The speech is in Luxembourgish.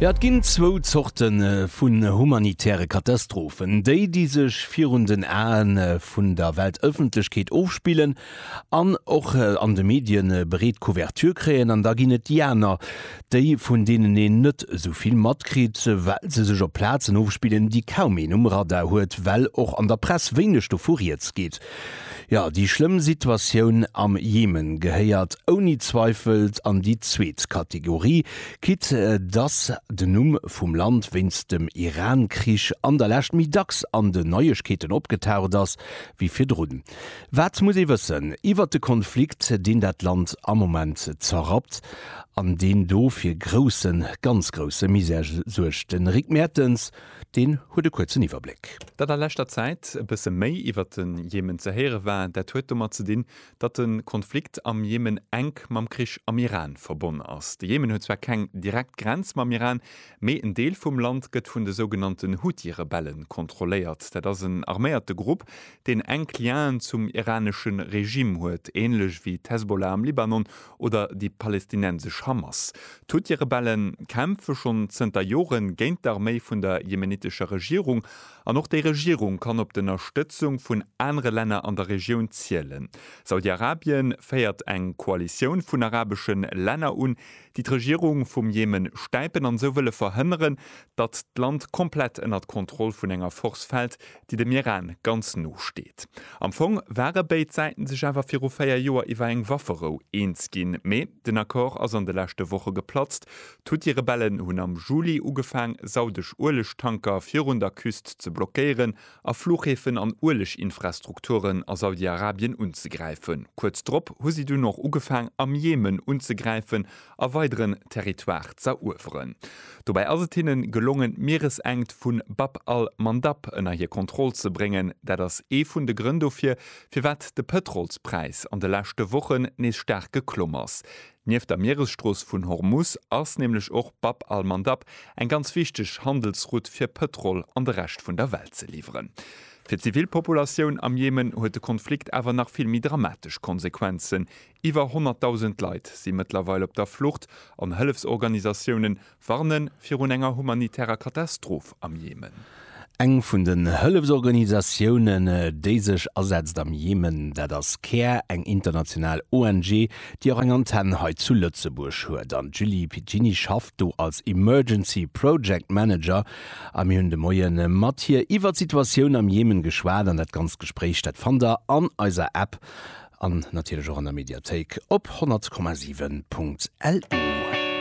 Jo, et ginn zwou Zorte vun humanitäre Katastrophen, déi, déi sech virun den Ae vun der Weltëffentlechkeet ofspillen an och an de Medie breet Couverture kréien, an da ginn et déi aner, déi, vun deenen een net esou vill matkritt, well se sech op Plazen ofspillen, déi kaum een um Radar huet, well och an der Press wéineg dovu Rieds geet. Jo, déi schlëmm Situatioun am Jemen gehéiert ouni Zweifel an déi zweet Kategorie, quitte dass den Numm vum Land wéinst dem Iran-Krich an der Lescht méi dacks an den Neiegkeeten opgetaucht ass wéi virdrun. Wat muss ee wëssen iwwert de Konflikt, deen dat Land am Moment zerrappt an deen do fir groussen, ganz grousse Misär suergt? De Rick Mertens. Deen huet e kuerzen Iwwerbléck. Datt a leschter Zäit e bësse méi iwwert de Jemen ze héiere war, dat huet domat ze dinn, datt de Konflikt am Jemen enk mam Krich am Iran verbonn ass. De Jemen huet zwar keng direkt Grenz mam Iran, mee en Deel vum Land gëtt vun de sougenannten Huthi-Rebelle kontrolléiert. Dat ass en arméierte Grupp, deen enk Lienen zum iranesche Regime huet, änlech wéi d'Hezbollah am Libanon Oder déi palestinensesch Hamas. D'Houthi-Rebelle kämpfe schonn zënter Jore géint d'Arméi vun der jemenitescher Regierung. An och déi Regierung kann op d'Ënnerstëtzung vun anere Länner an der Regioun zielen. Saudi-Arabien féiert eng Koalitioun vun arabesche Länner un, déi d'Regierung vum Jemen stäipen an esou wëlle verhënneren, datt d'Land komplett ënnert d'Kontroll vun enger Force fält, déi dem Iran ganz no steet. Am Fong ware béid Säiten sech awer viru véier Joer iwwer eng Wafferou eens ginn, mee den Accord ass an de leschte Woche geplatzt. D'Huthi-Rebellen hunn am Juli ugefaang, saudesch Uelegtanker virun der Küst ze blockéieren a Fluchhäfen an Ueleginfrastrukturen a Saudi-Arabien unzegräifen. Kuerz drop hu si dunn och ugefaang, am Jemen unzegräifen a weideren Territoire z'erueweren. Dobäi ass et hinnen gelongen d'Mieresenkt vu Bab al-Mandab ënner hir Kontroll ze bréngen. Dat ass ee vun de Grënn dofir, firwat de Pëtrolspräis an de leschte Wochen nees staark geklomm ass. Nieft der Mieresstrooss vun Hormus ass nämlech och Bab al-Mandab eng ganz wichteg Handelsroute fir Pëtrol an de Rescht vun der Welt ze liwweren. Fir d'Zivilpopulatioun am Jemen huet de Konflikt awer nach vill méi dramatesch Konsequenzen, Iwwer 100.000 Leit si mëttlerweil op der Flucht an Hëllefsorganisatiounen warnen virun enger humanitärer Katastroph am Jemen. Eng vun den Hëllefsorganisatiounen, déi sech asetzt am Jemen, dat ass care, eng international ONG, déi och eng Antenn hei zu Lëtzebuerg huet. An d'Julie Piccini schafft do als Emergency Project Manager. A mir hunn de Moie mat hir iwwert d'Situatioun am Jemen geschwat. An dat ganzt Gespréich, dat fannt der an eiser App. An natierlech och an der Mediathéik op 100,7.lu.